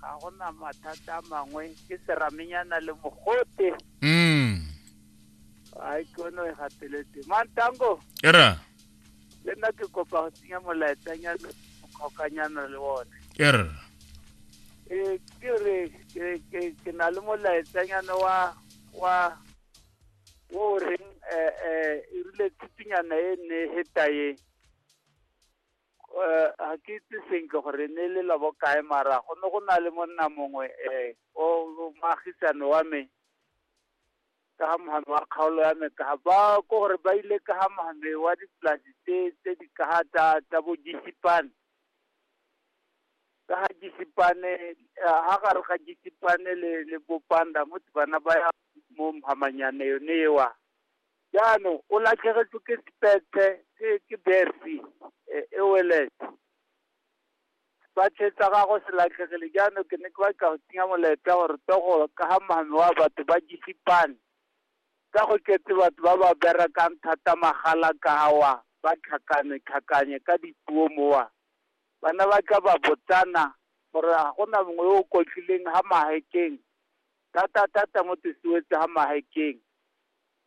ga go na mathata a mangwe ke seramenyana le mogote mm a ikono e gateletse mantango e ra le nna ke kopa go tsenya molaetsanyana mokgokanyana le one e ra ee ke re ke- ke- ke na le molaetsanyana wa wa wo o reng um e rile thutunyana e ne e heta ye Eh, ga ke itse sentle gore ne e le labo kae mara go ne go na le monna mongwe um o o moagisane wa me ka ga mohame wa kgaolo ya me ka ga ba ko gore ba ile ka ga mohame wa dipolasi tse tse di ka ga tsa tsa bo jesipane ka ga jesipane ga gare ga jesipane le le bopanda mo bana ba ya mo mohamanyane yone ewa Jaanong o latlhegetswe ke Spete, ke ke Berthy, e- Ouellet. Sefatlhego sa gagwe se latlhegile jaanong ke ne ke batla go tsenya molaetsa gore to go ka ga mame wa batho ba jese pan. Ka go tletse batho ba ba berekang thata magala ka awa ba tlhakane tlhakanye ka dipuo mowa. Bana ba tla ba botsana gore ga gona mongwe yo o kotlileng ha Mahikeng, thata thata mo Tesuwetse ha Mahikeng.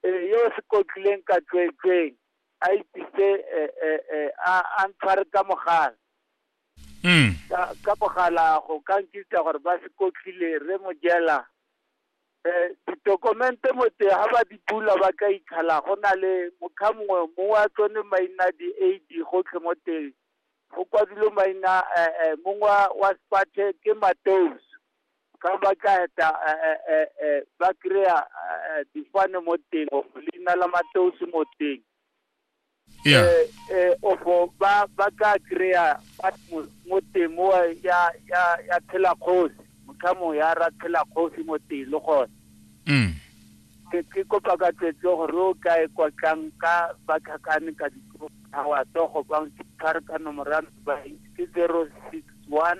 Ee, yo o se kotlileng ka tsweetsweeng a itise e, e, e, a a ntshware ka mogala Mm. ka ka mogala go ka nkitsa gore ba se kotlile re mo jela um ditokomente motse ga ba di bula ba ka ikgala go na le mokgwa mongwe mo wa tsone maina di-a d gotlhe mo teng go kwadilwe maina um mongwe wa- wa sepathe ke mateus ka ba tla eta eh, eh, eh, eh, ba kry-a eh, difane mo teng or leina la mateosi mo teng yeah eh, eh, ofo ba ba tla kry-a ba mo- mo teng mo ya ya ya tshela kgosi motlhamo ya ra tshela kgosi mo teng le gone mm. ke ke kopa ka tsetse gore o ka e kwatlang ka ba tlhakane ka ditlogawa tsogo bang tshware ka nomorano ba ke zero six one